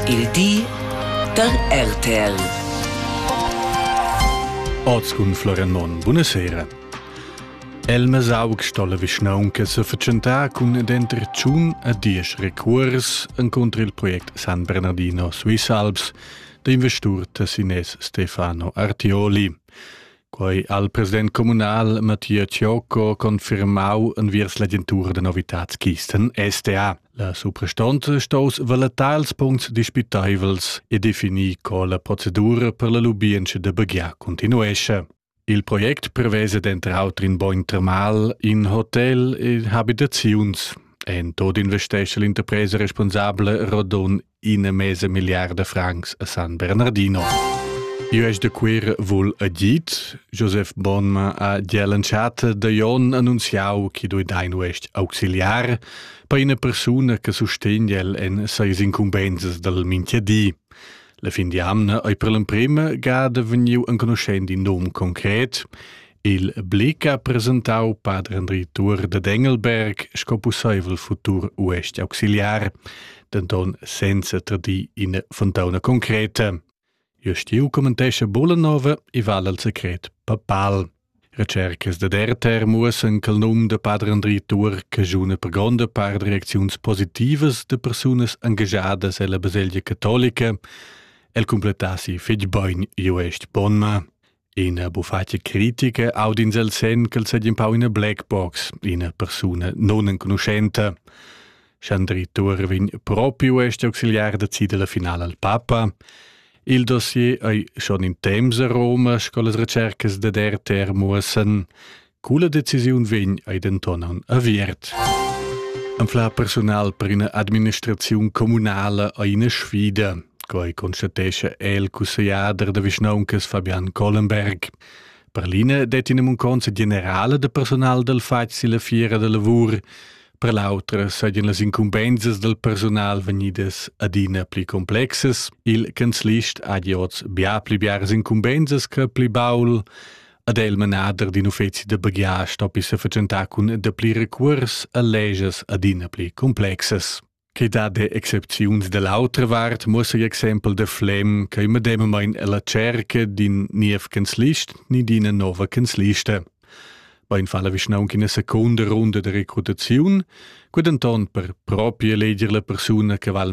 Il di da RTL. Oz cun Florian Monn, buonasera. El mesauc sto la vischnaunca se fatschentar cun denter tschun a diesch recuors encontr il project San Bernardino Swiss Alps da investur Tessines Stefano Artioli. Quei al president communal Mattia Ciocco confirmau enviers l'agentura da novitads Kisten STA. La suprastonza stos valutar ils puncts dispiteivels e definir co la procedura per la lubientscha da baghiar continuesce. Il project prevesa denter auter in bogn termal, in hotel e habitaziuns. En tot investesce l'interpresa responsabla Rodon in mese miliarda francs a San Bernardino. Io de quir vul a dit, Joseph Bonma a Dielenschate de Jon annunziau che doi dein uest auxiliar per una persona che sostegna el en seis incumbenzas del Minchiadi. La fin di amna ei per l'emprema gada vegniu enconuschend in nom concret, Il Blick ha presentau pader Andri Tuor da Engelberg sco pusseivel futur uestg auxiliar, denton senza tradir ina fontauna concreta. Jostiu commentescha Bollanova e val al secret papal. Recercas da Derter muossen che il num da pader Andri Tuor cagiuna per gronda part reacziuns positivas da persunas engagiadas ella baselgia catolica. El completassi fetg bein uestg Bonma. Ina bufatga critica audins el sen ch'el seigi empau ina black box, ina persuna non enconuschenta. Schandri Tur vegn propiu este auxiliar da cida la finala al papa. Il dossier ei schon in temps a Roma, sco las recercas da der muossen. Cula decisiun vegn ei denton aviert. Anfla personal per ina administraziun communala ei ina sfida, quei constatescha el cussegliader da vischnauncas Fabian Collenberg. Per l'ina det in munconza generale de personal del fatg silla fiera de lavur, per l'autra sajan las incumbensas del personal vegnidas adina pli complexes. Il canzlist ha giots bia pli biaras incumbensas che pli baul. ad el manader d'in uffeci da baghiar stoppi se fatschentar cun dapli recuors a leges adina pli complexes. Che da de excepziuns dell'autra vart muossa exempel de Flem che medemmain la cerca d'in niev canzlist ni d'ina nova canzlista. Bein falla vischnaunc in seconda runda de recrutaziun, qued anton per propria leger la persuna che val